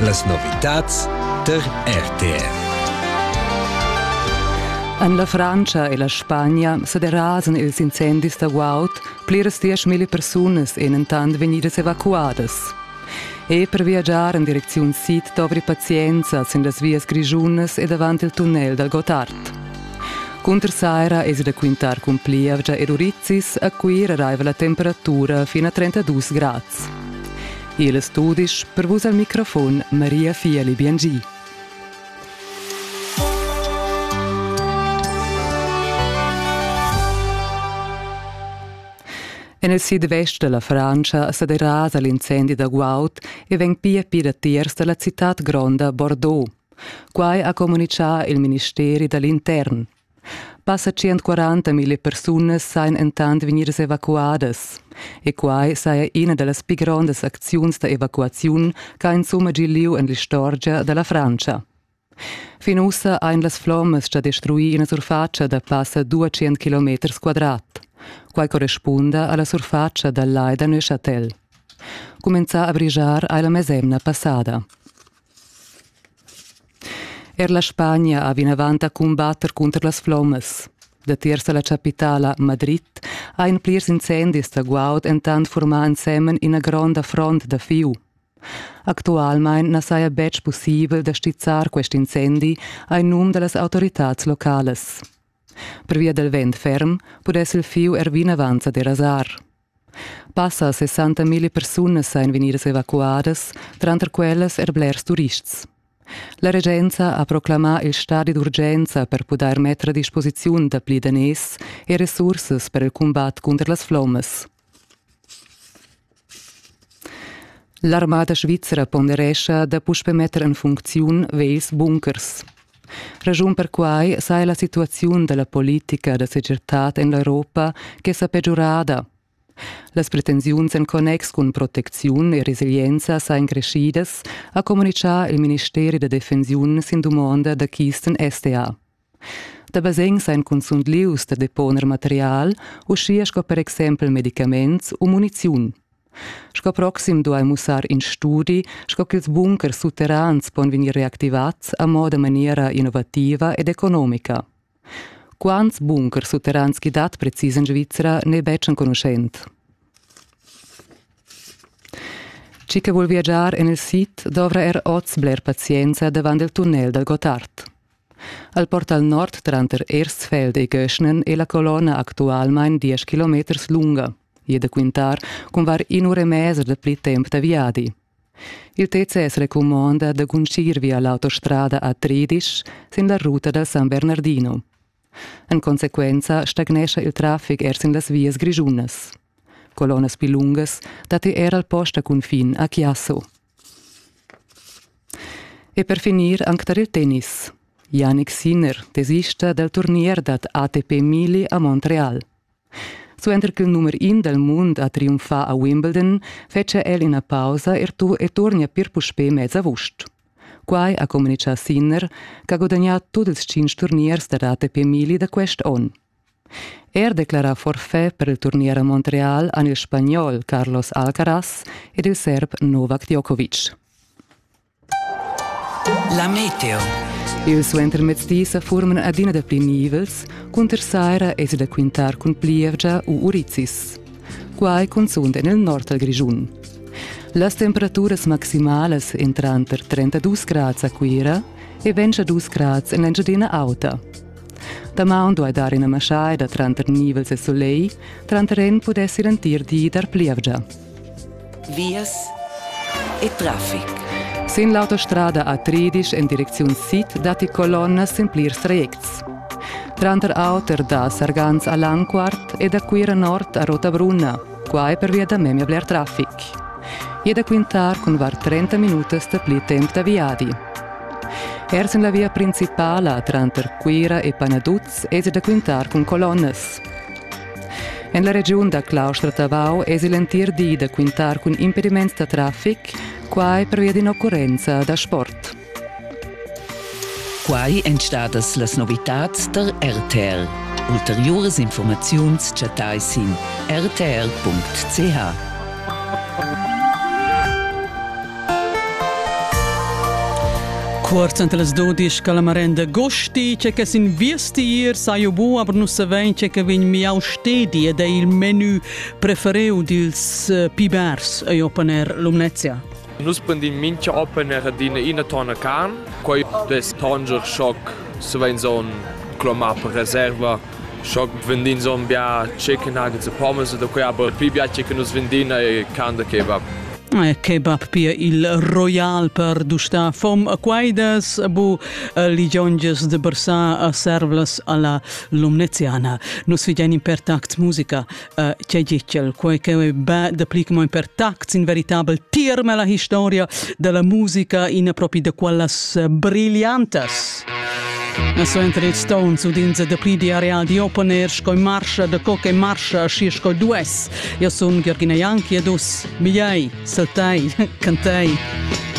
Las novitads tar RTR. En la Frantscha e la Spagna sa derasan ils incendis da guaud pliras dieschmilli persunas en entant vegnidas evacuadas. E per viagiar en direcziun sid dovri pazienza sin las vias grischunas e davant il tunnel dal Gotthard. Cunter saira èsi da quintar cun plievgia ed urizzis, a Cuira raiva la temperatura fin a 32 grad. Igl studisch per vus al microfon Maria Fieli Biengi. En il sid-vest da la Frantscha sa derasa l'incendi da guaud e vegn pia pir datiers da la citad gronda Bordeaux. Quai ha communitgà il ministeri da l'intern. Passa 140 mille persunas sajan entant vegnidas evacuadas. E quai saja ina da las pli grondas acziuns da evacuaziun ch'ha insumma gì lieu en l'istorgia da la Frantscha. Fin ussa ein las flommas già destruì ina surfatscha da passa 200 km quadrat. Quai correspunda alla surfatscha dal Lai da Neuchâtel. Cumenzà a brigiar hai la mesemna passada. Er la Spagna ha vinavant da cumbatter cunter las flommas. Datiers da la chapitala Madrid ein plirs incendis da guaud entant formà ensemen ina gronda front da fiu. Actualmein na saja betg pussibel da stizzar quest incendi ein num da las autoritads localas. Pervia dal vent ferm pudess il fiu er vinavant sa derasar. Passa 60.000 persunas ein vegnidas evacuadas, tranter quellas er blers turists. La regenza ha proclamà il stadi d'urgenza per pudair metter a disposiziun dapli daners e resursas per il cumbat cunter las flommas. L'armada svizra ponderescha da puspè metter en funcziun vegls bunkers. Raschun per quai saja la situaziun da la politica da segirtad en l'Europa che sa pegiurada. Las pretensiuns en connex cun protecziun e resilienza sajan creschidas, ha communitgà il ministeri da defensiun sin dumonda da Kisten SDA. Da basegn sajan cunzunt lieus da deponer material, uschia sco per exempel medicaments u muniziun. Sco proxim duai mussar in studi, sco ch'ils bunkers sutterrans pon vegnir reactivads a moda maniera innovativa ed economica. Quants bunkers sutterrans ch'i dat precis en Svizra n'è betg enconuschent. Chi che vul viagiar en il sid dovra er oz bler pazienza davant il tunnel dal Gottard. Al portal nord tranter Ersfeld e Göschnen è la colonna actualmain 10 km lunga. e da quintar cun var in'ura e mesa da pli temp da viadi. Il TCS recumonda da guncir via l'autostrada a Tridisch sin la ruta da San Bernardino. En consequenza stagnescha il traffic er sin las vias grischunas. Colonas più lungas datti er al post a confin a Chiasso. E per finir anche tar il tennis. Yannick Sinner, tesista del turnier dat ATP Mili a Montreal. Suenter ch'il numer in dal mund ha triumfà a Wimbledon, fetschia el ina pausa er tu e turnia pir puspè mez avust. Quai ha communitgà Sinner, ch'ha gudagnà tut ils tschintg turniers da ATP Mili da quest onn. Er declarà forfait per il turnier a Montreal han il Spagnol Carlos Alcaraz ed il Serb Novak Djokovic. La meteo. Il suentermezdi sa forman adina dapli nivels, cunter saira esi da quintar cun plievgia u urizis. Quai cunzunt en il nord dal Grischun. Las temperaturas maximalas entran per 32 grads a Cuira e 22 grads en l'Engiadina Auta. Damaun duai dar ina maschaida tranter nivels e sulegl, tranter en pudess ir entir di dar plievgia. Vias e traffic. Sin l'autostrada a Tridisch en direcziun sid datti colonnas sin plirs retgs. Tranter auter da Sargans a Lanquart e da Cuira nord a Rotabrunna quai pervia da memia bler traffic. E da quintar cun var 30 minutas dapli temp da viadi. Ers en la via principala tranter Cuira e Panaduz esi da quintar cun colonnas. En la regiun da Claustra-Tavau esi l'entir di da quintar cun impediments da traffic, quai pervia d'in'occurrenza da sport. Quai èn stadas las novitads tar RTL. Ulteriuras informaziuns chattai sin rtl.ch. Cuort ante las 12 la marenda gosti c'è che sin viestir sai bu aber nu savein c'è che vegn miau stedi ed è il menü prefereu dils eh, pibers a Jopaner Lumnezia. Nus prendin mincha open er adina ina tonna carn. Quai dess tonger schoc se vain zon clomà per reserva. Schoc vendin zon bia chicken nuggets e pommes da quei aber pli bia che nus vendin e carn da kebab. Kebab pia il royal per dustar fom a quaidas bu ligionges de bersà a servlas alla Lumneziana. Nus vigianim per tact musica che gitgel quei che be dapli che mo per tact in veritabel tirme la historia della musica in propri de quellas brillantas So entre Stones udinze de pli di areal di open air sco marscha de co che marscha schi sco dues. Io sun Georgina Janki ed us, migliai, saltai, cantei.